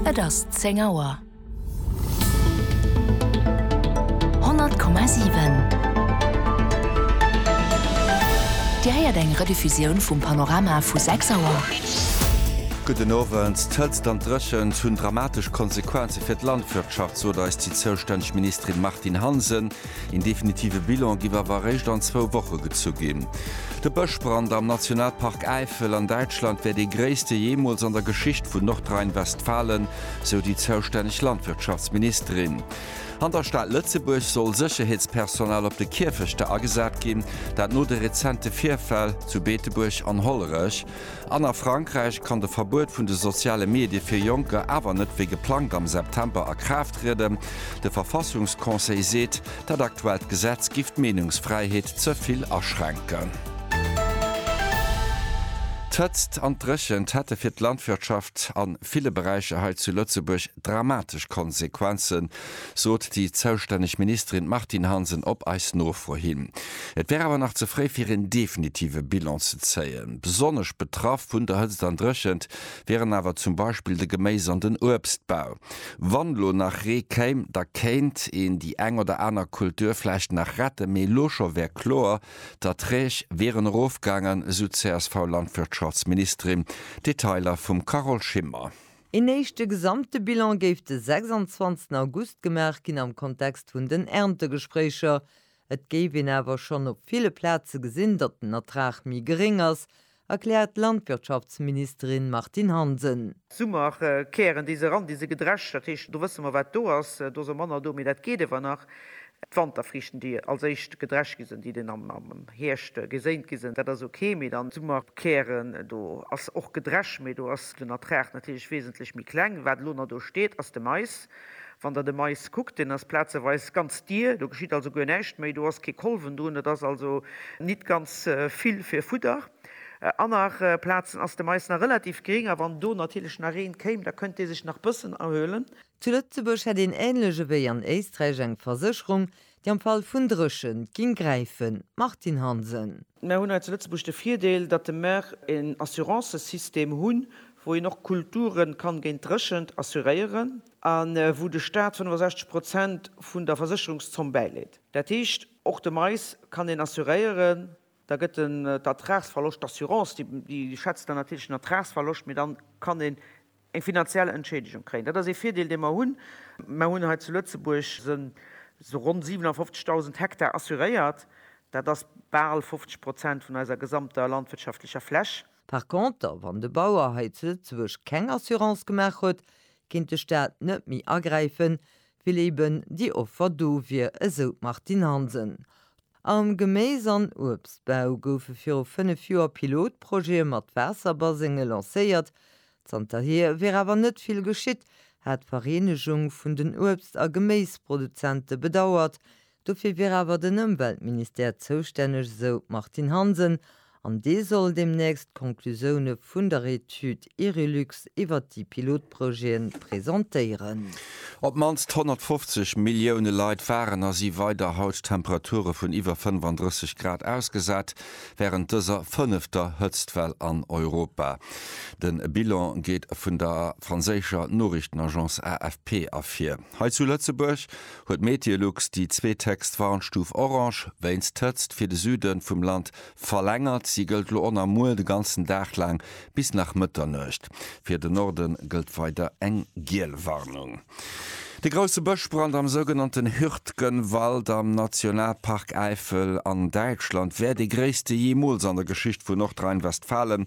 Et ass zéng Auer. 100,7 Dir héiert eng Rediffusioun vum Panorama vu 6 Auer. Gudden Owend. D'Hëtzt an d'Dréchent hunn dramatesch Konsequenze fir d'Landwirtschaft, sot eis déi zoustänneg Ministerin Martine Hansen. Een definitive Bilan giff awer eréischt an zwou Woche gezu ginn. De Bëschbrand am Nationalpark Äifel an Däitschland wär dee gréisste jeemools an der Geschicht vun Nordrhein-Westfalen, sou déi zoustänneg Landwirtschaftsministerin. An der Stad Lëtzebuerg soll Sécherheetspersonal op de Kierfechter agesat ginn, dat no de rezente Virfäll zu Beetebuerg an Hollerech. An a Frankräich kann de Verbuet vun de soziale Medie fir Jonker awer net wéi geplangt am September a Kraaft trieden. De Verfassungsconseil seet, dat aktuellt Gesetz giff d'Meenungsfräiheet ze vill aschränken. D'Hëtzt an d'Dréchent hätte fir d'Landwirtschaft a ville Beräicher hei zu Lëtzebuerg dramatesch Konsequenzen, sot déi zoustänneg Ministerin Martine Hansen op eis Nofro hin. Et wär awer nach ze fréi fir een definitive Bilan ze zéien. Besonnesch betraff vun der Hëtzt an Dréchent wieren awer zum Beispill de Geméis an den Uebstbau. Wann elo nach Ree kéim, da kéint een déi eng oder aner Kultur vläicht nach retten, mee elo scho wär kloer, d'Erträg wieren erofgaangen, esou d'CSV-Landwirtschaftsministerin. Detailer vum Carole Schimmer. Een éischte gesamte Bilan géif de 26 August gemaach ginn am Kontext vun den Erntegespréicher. Et géif een awer schonn op ville Plaze gesinn, datt den Ertrag méi geréng ass, erkläert d'Landwirtschaftsministerin Martine Hansen. Summerkären, déi se eran, déi se gedrescht, dat heescht do wësse mer wat do ass, do ass och manner do, mee dat geet iewer nach. D'Wanterfriichten, déi als éischt gedrescht gi sinn, déi den am Hierscht geséint gi sinn, dat ass ok, mee dann d'Summer Kären, do ass och gedrescht, mee do ass den Ertrag natierlech wesentlech méi kleng. Wat elo nach do steet, ass de Mais. Wann Der de Mais kuckt, deen ass plazeweis ganz dier, do geschitt also guer näischt méi, do ass kee Kolwen drun, et ass also nit ganz vill fir Fudder. Aner Plazen ass de Mais nach relativ gering a wann do natierlech nach Reen kéim, da kënnt dee sech nach bëssen erhuelen. Zu Lëtzebuerg hätt een ähnlech ewéi an Éisträich eng Versécherung, déi am Fall vun Dréchent ging gräifen. Martine Hansen. Mär hunn hei zu Lëtzebuerg de Virdeel, datt de mär een Assurancesystem hunn, wou een och Kulturen kann géint Dréchent assuréieren an wou de Staat 65 Prozent vun der Versécherungszomm bäileet. Dat heescht, och de Mais kann een assuréieren. Da gëtt den d'Ertragsverloscht, d'Assurance déi schätzt dann natierlech den Ertragsverloscht, mee dann kann een eng finanziell Entschädigung kréien. Dat ass ee Virdeel, dee mer hunn. Mer hunn hei zu Lëtzebuerg esou ronn 57.000 Hektar assuréiert. Dat ass bal 50 Prozent vun eiser gesamter landwirtschaftlecher Fläch. Par contre, wann de Bauer hei zu Lëtzebuerg keng Assurance gemaach huet, kéint de Staat net méi agräifen, Well eben déi Offer do wier, esou d'Martine Hansen. Am Geméis an Uebstbau goufe viru fënnef Joer Pilotprojete mat Waasserbasenge lancéiert. Zanterhier wier awer net vill geschitt, hat d'Vereenegung vun den Uebst a Geméisproduzente bedauert. Dofir wier awer den Ëmweltministère zoustänneg, esou d'Martine Hansen, an dee soll deemnächst d'Conclusioune vun der Etüd Irilux iwwert déi Pilotprojete presentéieren. Op d'mannst 150 Millioune Leit waren a si weider haut Temperature vun iwwer 35 Grad ausgesat, wärend dëser fënnefter Hëtztwell an Europa. De Bilan geet vun der franséischer Noriichtenagence AFP ervir. Hei zu Lëtzebuerg huet Meteolux déi zweet héchst Warnstuf Orange wéinst Hëtzt fir de Süde vum Land verlängert. Si gëllt elo on a muer de ganzen Dag laang bis nach Mëtternuecht. Fir de Norde gëllt weider eng giel Warnung. De grousse Bëschbrand am sougenannten Hürtgenwald am Nationalpark Äifel an Däitschland wär dee gréisste jeemools an der Geschicht vu Nordrhein-Westfalen.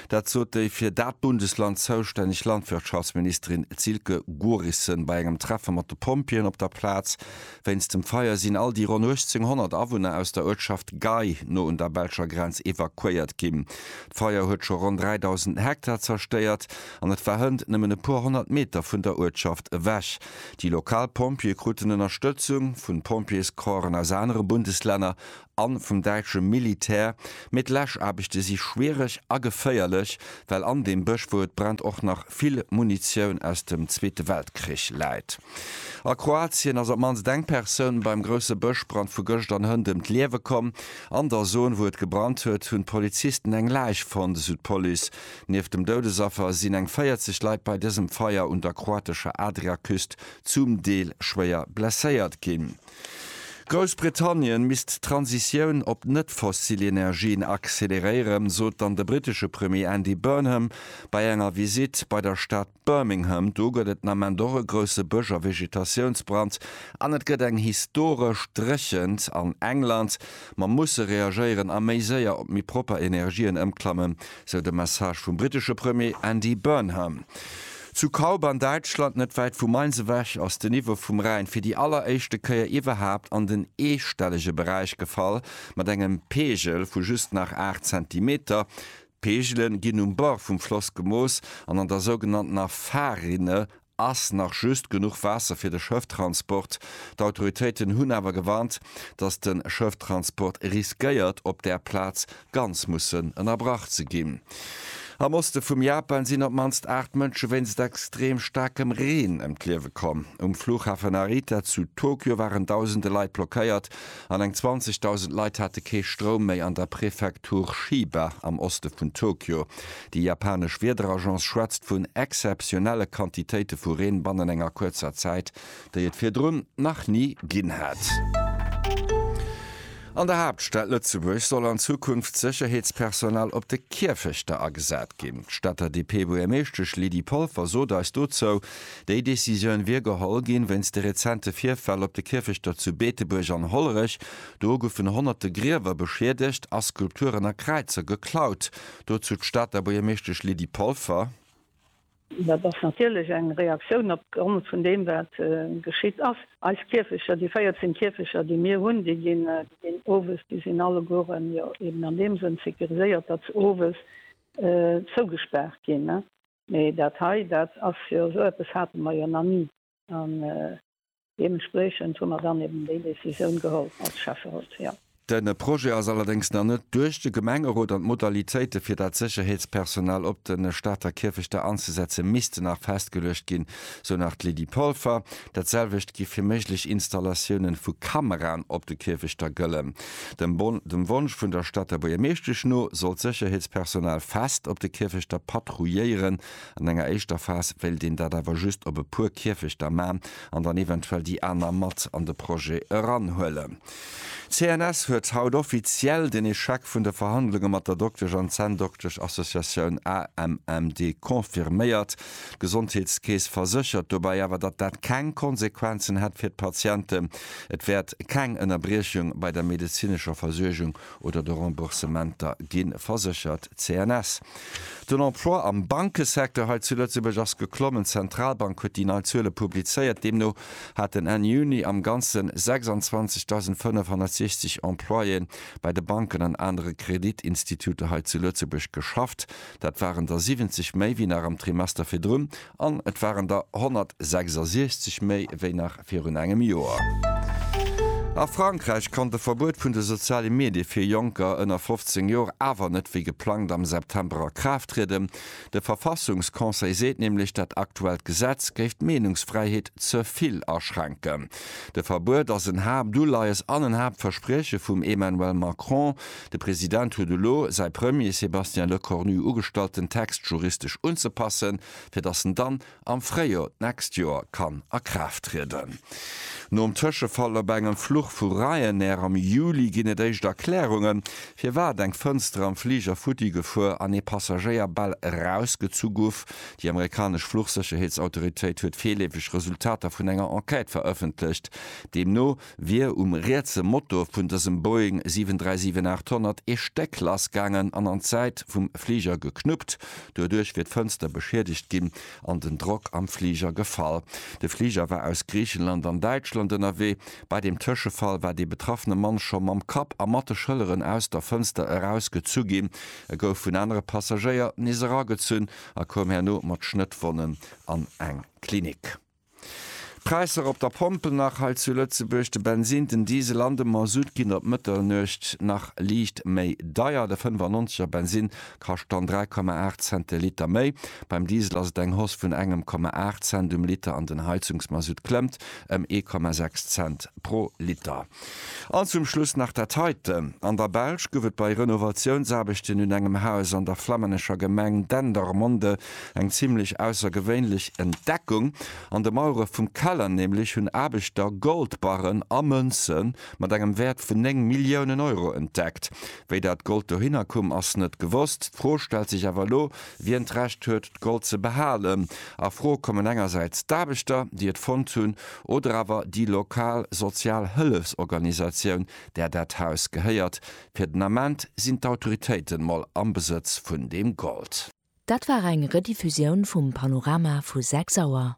Dat sot déi fir dat Bundesland zoustänneg Landwirtschaftsministerin Silke Gorissen bei engem Treffe mat de Pompjeeën op der Plaz. Wéinst dem Feier sinn all déi ronn 1.800 Awunner aus der Uertschaft Gei no un der belscher Grenz evakuéiert ginn. D'Feier huet scho ronn 3.000 Hektar zerstéiert an et war hënt nëmmen e puer honnert Meter vun der Uertschaft ewech. Déi lokal Pompjeeë kruten Ënnerstëtzung vun Pompjeescorpsen aus anere Bundeslänner a vum däitsche Militär, mee d'Läschaarbechte si schwiereg a geféierlech, well an deem Bësch, wou et brennt, och nach vill Munitioun aus dem Zweete Weltkrich läit. A Kroatien ass op d'mannst eng Persoun beim grousse Bëschbrand vu gëscht an Hënt ëm d'Liewe komm. An der Zon, wou et gebrannt huet, hunn d'Polizisten eng Läich fonnt, esou d'Police. Nieft dem Doudesaffer sinn eng 40 Leit bei dësem Feier un der kroatescher Adriaküst zum Deel schwéier blesséiert ginn. Groussbritannien misst d'Transitioun op net-fossil Energien acceleréieren, sot dann de brittesche Premier Andy Burnham bei enger Visitt bei der Stad Birmingham. Do gëtt et den Ament och e grousse Bësch a Vegetatiounsbrand an et gëtt eng historesch Dréchent an England. Mer musse reagéieren a méi séier op méi propper Energien ëmklammen, sou de Message vum brittesche Premier Andy Burnham. Zu Kaub an Däitschland, net wäit vu Mainz ewech, ass den Niveau vum Rhäin fir déi alleréischte Kéier iwwerhaapt an den eestellege Beräich gefall, mat engem Peegel vu just nach 8 Zentimeter. D'Peegele ginn um Bord vum Floss gemooss an an der sougenanntener Fahrrinne ass nach just genuch Waasser fir de Schëfftransport. D'Autoritéiten hunn awer gewarnt, datt de Schëfftransport riskéiert op där Plaz ganz mussen ënnerbrach ze ginn. Am Oste vum Japan sinn op d'mannst 8 Mënsche wéinst extrem staarkem Reen ëm d'Liewe komm. Um Fluchhafen Narita zu Tokio waren dausende Leit blockéiert an eng 20.000 Leit hate kee Stroum méi an der Prefektur Chiba am Oste vun Tokio. Déi japanesch Wiederagence schwätzt vun exzeptionelle Quantitéite vu Reen bannen enger kuerzer Zäit, déi et virdrun nach ni ginn hat. An der Haaptstad Lëtzebuerg soll an Zukunft Sécherheetspersonal op de Kierfechter agesat ginn. D'Stater DP-Buergermeeschtesch Lydie Polfer sot eis dozou, déi Decisioun wier geholl ginn, wéinst de rezente Virfäll op de Kierfechter zu Beetebuerg an Hollerech. Do goufen honnerte Griewer beschiedegt a Skulpturen a Kräizer geklaut. Dozou d'Stater Buergermeeschtesch Lydie Polfer. Dat ass natierlech eng Reaktioun op Grond vun deem, wat geschitt ass. Eis Kierfecher, déi 14 Kierfecher, déi mir hunn, déi ginn owes, déi sinn allegueren jo eben an deem Sënn sécuriséiert, datt se owes zougespaart ginn. Mee dat hei, dat ass jo, esou eppes hate mer jo nach ni. An deementspriechend hu mer dann eben déi Décisioun geholl als Schäfferot, jo. De Projet ass allerdéngs nach net duerch de Gemengerot an d'Modalitéite fir dat Sécherheetspersonal op de Stater Kierfechter anzesetze missten nach festgeluecht ginn, sou nach d'Lydie Polfer. Dat selwecht géif fir méiglech Installatioune vu Kameraen op de Kierfechter gëllen. Dem Wonsch vun der Stater Buergermeeschtesch no soll d'Sécherheetspersonal fest op de Kierfechter patrouilléieren An enger éischter Phas wéilt een dat awer just op e puer Kierfechter man an dann eventuell déi aner mat an de Projet eranhuelen. D'CNS huet haut offiziell den Echec vun de Verhandlunge mat der Doktesch an Zänndoktesch Associatioun AMMD confirméiert. D'Gesondheetskeess verséchert dobäi awer, datt dat keng Konsequenzen hätt fir d'Patienten. Et wäert keng Ënnerbriechung bei der medezinescher Versuergung oder de Remboursementer gi verséchert, CNS. Den Emploi am Bankesecteur hei zu Lëtzebuerg ass geklommen. D'Zentralbank huet déi nei Zuele publizéiert. Deemno haten Enn Juni am Ganzen 26.560 Employéen bei de Banken an anere Kreditinstituter hei zu Lëtzebuerg geschafft. Dat waren der 70 méi wéi nach am Trimester virdrun An et waren der 166 méi wéi nach virun engem Joer. A Frankräich konnt e Verbuet vun de soziale Medie fir Jonker ënner 15 Joer awer net wéi geplangt am September a Kraaft trieden. De Verfassungsconseil seet nämlech, dat aktuellt Gesetz géif d'Meenungsfräiheet ze vill aschränken. De Verbuet ass en Haaptuleies an en Haaptversprieche vum Emmanuel Macron, De President huet elo säi Premier Sébastien Lecornu ugestallt den Text juristesch unzepassen, fir datt en dann am Fréijor d'nächst Joer kann a Kraaft trieden. Nom Tëschefall op engem Fluch vu Ryanair am Juli ginn et éischt Erklärungen, firwat eng Fënster am Fliger futti gefuer an ee Passagéier bal erausgezu guff. Déi amerikanesch Fluchsécherheetsautoritéit huet virleefeg Resultater vun enger Enquête verëffentlecht, deemno, wier um rietse Motor vun dësem Boeing 737-800 ee Stéck lass gaangen an an d'Säit vum Fliger geknuppt. Doduerch wier d'Fënster beschiedegt ginn an den Drock am Fliger gefall. De Fliger war aus Griichenland an Däitschland ënnerwee. Bei dem Tëschefall war dee betraffene Mann scho mam Kapp a mat de Schëlleren aus der Fënster erausgezu ginn. E gouf vun anere Passagéier nees eragezunn a koum herno mat Schnëttwonnen an eng Klinik. D'Präisser op der Pompel nach hei zu Lëtzebuerg, de Bensin, den Diesel an de Mazout ginn op Mëttelnuecht nach liicht méi deier. De 95 er Bensin kascht dann 3,8 Cent de Liter méi, beim Diesel ass et eng Hausse vun engem Komma 8 Cent um Liter an den Heizungsmazout klëmmt ëm ee Komma 6 Cent pro Liter. An zum Schluss nach dat heiten, An der Belsch gouf et bei Renovatiounsaarbechten un engem Haus an der flammännescher Gemeng Dendermonde eng zimlech aussergewéinlech Entdeckung. An de Mauere vum Keller nämlech hunn Aarbechter Goldbarren a Mënze mat engem Wäert vun 9 Milliounen Euro entdeckt. Wéi dat Gold dohinner komm, ass net gewosst. D'Fro stellt sech awer elo, wien d'Recht huet, Gold ze behalen. A Fro kommen engersäits d'Aarbechter, déi et fonnt hunn, oder awer déi lokal sozial Hëllefsorganisatioun, där dat Haus gehéiert. Fir den Ament sinn d'Autoritéiten mol am Besëtz vun deem Gold. Dat war eng Rediffusioun vum Panorama vu 6 Auer.